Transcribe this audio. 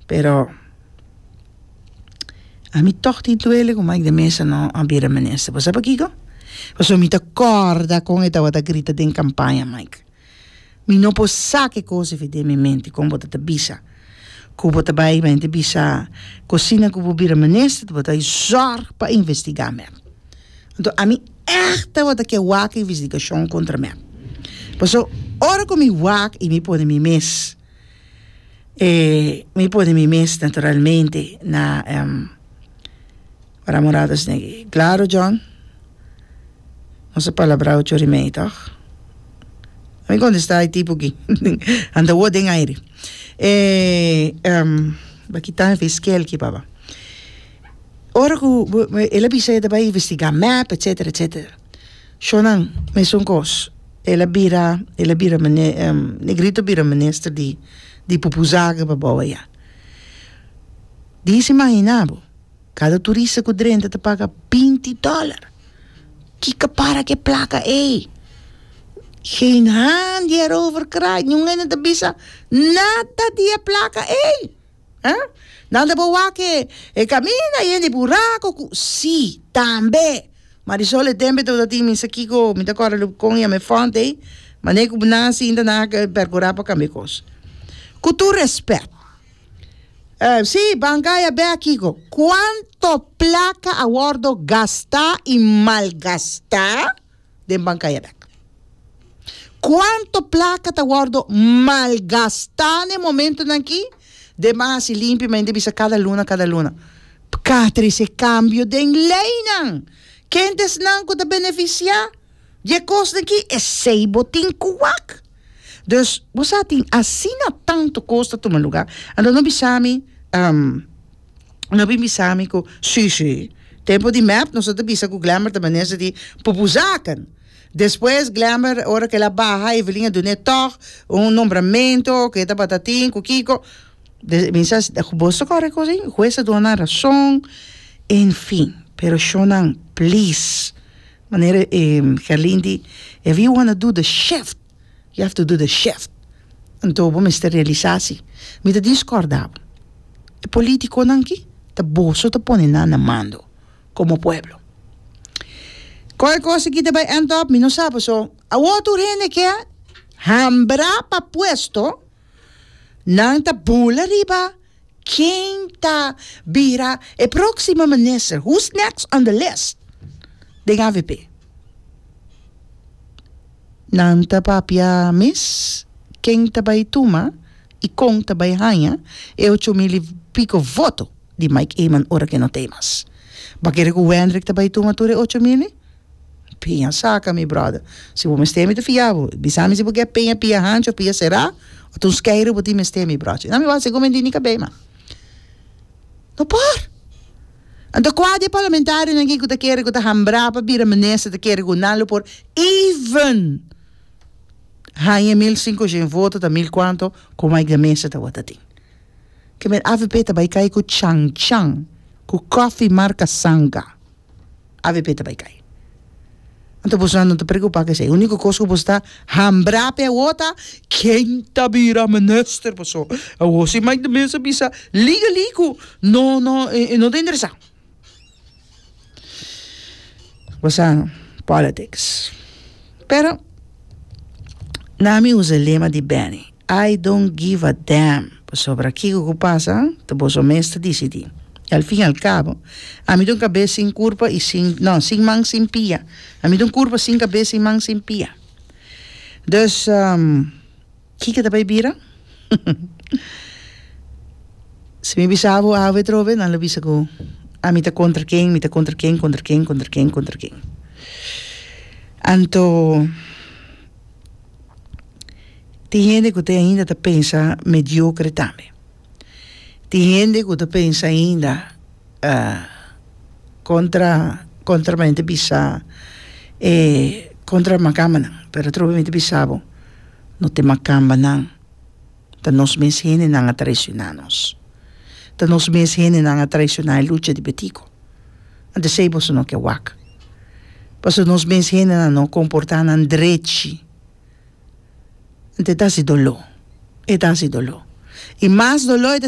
Pero, a mi tòg tin duele ku Mike de Meza no a bira minister. Bo sa pakiko? Pasobra mi ta kòrda kon e tabata grita den kampaña, Mike. Mi no por sa ke kos a fin den mi mente kon bo ta ta bisa ku bo ta bai bai ta bisa ku asina ku bo bira minister ta bo ta bai zòrg pa investigá mep. Anto ami èg tabata ke wak investigashon kontra mep. Pasobra ora ku mi wak i mi pone mi mes mi pone mi mes naturalmente na ora morados ne'e claro John no sa palabrao chori mei toch a mi contesta e tipo ki anta woord den aire ba kita e fiscal ki papá ora ku bo bo ela bisa e ta bai investiga mep etcetera etcetera. Shonan, mesun kos. El a bira, el a bira mine, Negrito a bira minister di, di pupuzaken pa bou aya. Disa imaginá bo, kada turista ku drenta ta paga binti dòler. Ki ka para ku e plaka ei? Geen haan di heroverkraai, niun hende no ta bisa nada di e plaka ei. Huh? Nan ta por wake e camina yen di buraco cu si, tambe. Marisol e tembe to ta tin mi sa kiko mi ta corre loop con y a me font ey mane cu nan sinta nan a percura pa cambia cos. Cu tur respect. Uh, si, banca ey a bek kiko. Cuanto placa a wordo gasta y malgasta? den bankaya dèk. Kuantu plaka ta wòrdu malgastá na e momentunan akí? Den ban hasi limpi, ma yin ta bisa kada luna, kada luna. P'ka trese kambio den leinan? Kentisnan ku ta benefisiá di e kosnan akí esei bo tin ku wak? Dus, bo sa tin asina tantu kos ta tuma luga, anto no bisa mi, ehm, no bin bisa mi ku, Sí, sí, tempu di mèp nos no ta bisa ku Glenber ta menester di pupu zaken. Despues Glenber, ora ku el a baha, Evelyn a dun'é tòg un nombramentu ku e tabata tin, ku kiko. Des, mi sa, bo so kòrek kos ei? Hues a duna nan rason, en fin. Pero shonnan, please. Manera e Carlin di, If you wanna do the shift, you have to do the shift. Anto bo mester realisa si. Mi ta discorda bo. E politiconan aki ta boso ta pone nan na mando como pueblo. Con e cos aki ta bay end up? Mi no sa, paso awor tur hende kia hambra pa puesto Nan ta bula riba ken ta bira e próksimo minister, who's next on the list, den avp. Nan ta papia mes ken ta bai tuma i kon ta bai haña e ocho mil i piko voto di Mike Eman ora ke no ta ei mas. Bo a kere ku Wendrick ta bai tuma tur e ocho mil? Piña saca mi brother. Si bo mester mi ta fia bo. Bisa mi si bo ke piña pia hanchi of pia sera of ta un skeiro bo tin mester mi brochi. Nan mi wou a haci gomendi ni cabey man. No por. Anto cua di e parlamentario nan cu ta kere cu ta hambra pa bira minister ta kere cu nan lo por even hanja mil cincocion voto ta mil cuanto cu Mike de Meza ta wata tin. Ke men avp ta bay cay cu chan chan cu coffee marca sanga. avp ta bai kai. Anto boso nan no ta preocupa cu esai, unico cos cu boso ta hambra pe awo ta ken ta bira minister paso awo si Mike de Meza bisa legally cu no no e no ta interesa. Basa no politics pero na mi usa lema di Benny. I don't give a damn, pasobra kiko ku pasa ta boso mes ta disidí. I al fin al kabo, ami ta un kabes sin kurpa i sin, no, sin man sin pia. Ami ta un kurpa sin kabes, sin man sin pia. Dus, kiko ta bai bira? Si mi bisa abo awe atrobe, nan lo bisa ku ami ta kontra ken, mi ta kontra ken, kontra ken, kontra ken, kontra ken. Anto. Tin hende ku ta ainda ta pensa mediokre tambe. Tin hende ku ta pensa ainda kontra kontra mi ta bisa e kontra makambanan pero atrobamento bisa bo no te makambanan. Ta nos mes hendenan a traicioná nos. Ta nos mes hendenan a traicioná e lucha di Betico. Ant esei boso no ke wak. Paso nos mes hendenan no comportá nan drechi. Ant e ta haci doló. E ta haci doló. I mas doló e ta.